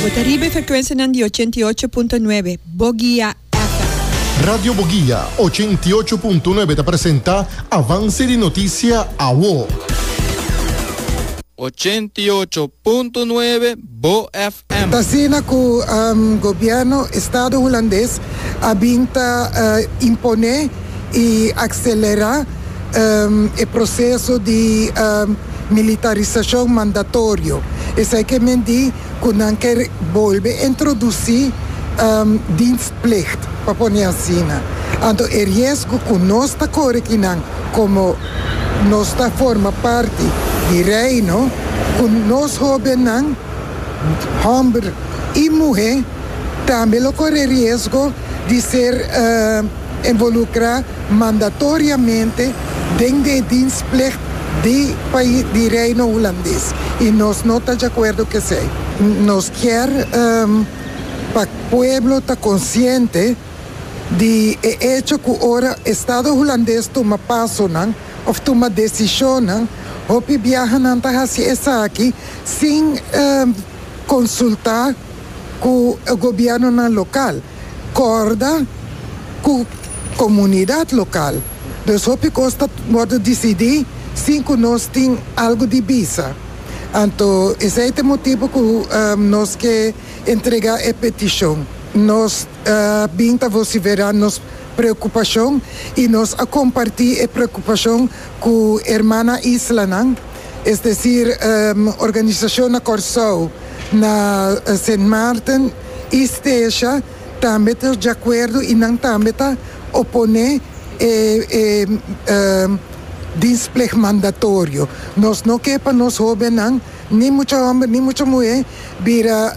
Bo ta riba e frekuensianan di ochenta i ocho punto nuebe Bogia FM. Radio Bogia ochenta i ocho punto nuebe ta presenta Avance di Noticia Awo. Ochenta i ocho punto nuebe Bo FM. T'asina cu Gobierno Estado Hulandes a bin ta imponé. y accelera e proceso di militarisacion mandatorio, esey ke men di cu nan ke bolbe introduci dienstplicht, pa pone asina. Anto e riesgo cu nos ta core aki nan como nos ta forma parti di Reino, cu nos hobennan, homber y muhe, tambe lo core riesgo di ser. Involucra mandatoriamente den di e dienstplicht di pais di Reino Hulandes y nos no ta djacuerdo cu esey. Nos kier pa pueblo ta consciente di e hecho cu ora Estado Hulandes tuma pasonan of tuma decisionnan, hopi biahanan ta haci esaki sin consulta cu gobiernonan local. corda cu comunidad local. Dus hopi cos ta wordo dicidi sin cu nos tin algo di bisa. Anto esey ta e motibo cu nos ke entrega e peticion. Nos a bin ta vocifera nos preocupacion y nos a comparti e preocupacion cu hermana islanan, es decir organisacion na Corsou, na Sint Maarten, y Stecia tambe ta di acuerdo y nan tambe ta opone e e dienstplicht mandatorio. Nos no ke pa nos hobennan, ni mucha homber ni mucha muhe, bira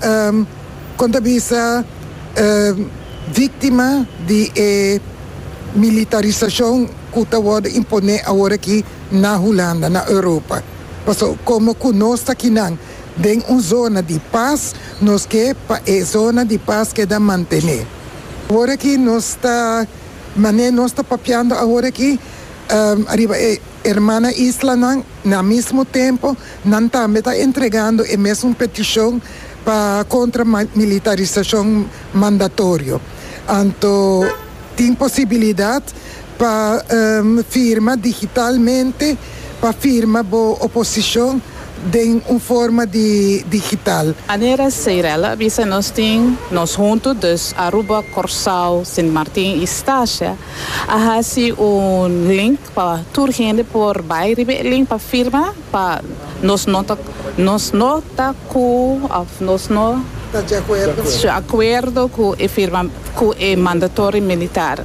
kon ta bisa victima di e militarisacion cu ta worde impone aworakí na Hulanda, na Europa. Pasobra como cu nos ta akinan. den un zona di pas, nos ke pa e zona di pas keda mantené. Awor aki nos ta, mané nos ta papiando awor aki ariba e hermana islanan, na mismo tempo nan tambe ta entregando e mesun petishon pa kontra militarisashon mandatorio. Anto tin posibilidat. Pa firma digitalmente, pa firma bo oposicion den un forma di digital. Anera Seirel a bisa nos tin nos hunto dus Aruba, Corsao, Sint Martin y Stasha a haci un link pa tur hende por bay riba e link pa firma pa nos no ta nos no ta cu of nos no ta de acuerdo cu e firma cu e mandatory militar.